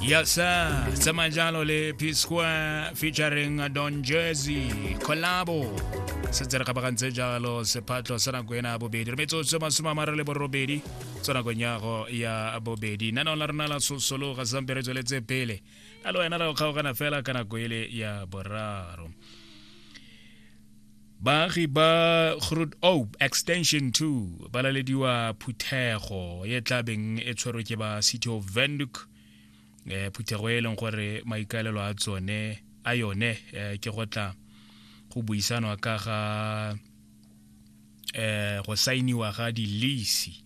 Yes, sir. Sema jalo le P Square featuring Don Jersey collabo. Setse re kgabagantse jalo sephatlo sa nako ena ya bobedi. Re metsotso masome a mare le borobedi tsa nako nyago ya bobedi. Nna la rona la sosolo ga sampe re tsweletse pele. A le wena ra go kgaogana fela ka nako ele ya boraro. baagi ba grod ope extension 2 ba lalediwa phuthego e tlabeng e tshwerwe ke ba city of vanduk um eh, phuthego e leng gore maikaelelo a tsone a yone um ke go tla go buisanwa ka ga um go sainiwa ga dilisi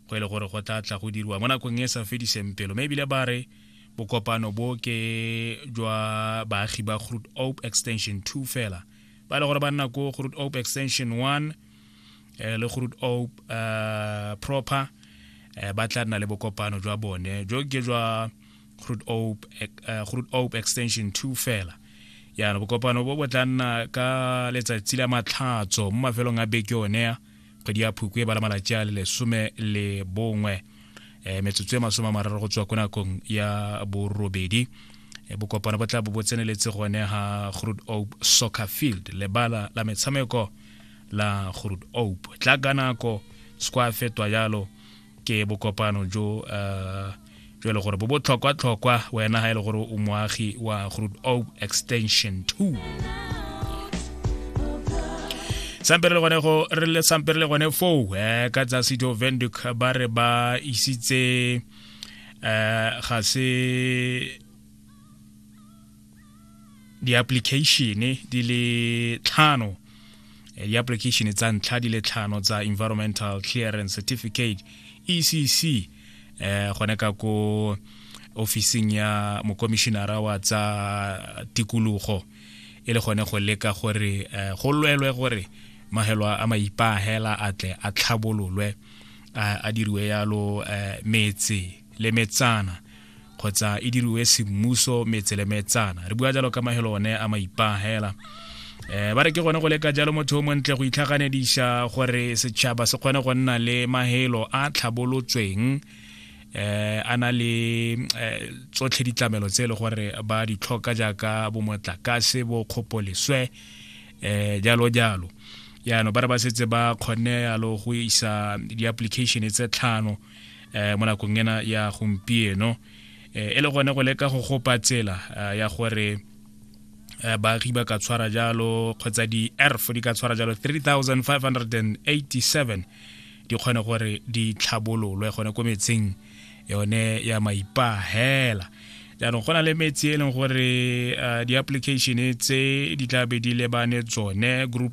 go e le gore go tla tla go diriwa mo nakong e sa fediseng pelo mme ebile ba re bokopano bo ke jwa baagi ba groot ope extension 2 fela ba e le gore ba nna ko groot ope extension one um le groot ope um eh, proper um ba tla nna le bokopano jwa bone jo ke jwa groot ope groot ope extension two fela yana bokopano bo bo tla nna ka letsatsi la matlhatso mo mafelong a beke one ya kgwedi ya phuku e bala malatsi a le lesome le bongwe um metsotso e masome a mararo go tswa ko nakong ya borobedi eh, bokopana bo tla bo bo tseneletse gone ga grood ope soccer field lebala la metshameko la grood ope tla ka nako se kwa fetwa jalo ke bokopano jo uh, jo e le gore bo botlhokwa-tlhokwa wena ga e le gore o moagi wa groot o extension 2 sampe re le gone go re le sampe re le gone foo um eh, ka tsa sito venduk ba re ba isitse um ga se di-application di le tlhano eh, di-application tsa ntlha di le tlhano tsa environmental clearance certificate ecc eh gone ka ko ofising ya mokomishinara wa tsa tikologo e le gone go leka gore eh, go lwelwe gore mahelo a maipahela a tle a tlhabololwe a diriwe yalo eh, metse le metsana kgotsa e diriwe semmuso metse le metsana re bua jalo ka mahelo one a maipagela eh ba re ke gone go leka jalo motho o montle go itlhaganediša gore setšhaba se kgone go nna le mahelo a tlhabolotsweng eh a na le eh, tsotlhe ditlamelo tse e le gore ba di tlhoka jaaka bomotlakase bo kgopoleswe eh jalo jalo yaanong ba re ba setse ba kgonne yalo go isa di-application tse tlhano eh, mo nakong ena ya gompieno eh, e le gone go leka go gopa tsela eh, ya gore eh, baagi ba ka tshwara jalo kgotsa di-erf di ka tshwara jalo 3587 di kgone gore di tlhabololwe gone ko metseng yone ya maipahela jaanong go na le metsi e leng gore uh, di-application tse di tla be di lebane tsone group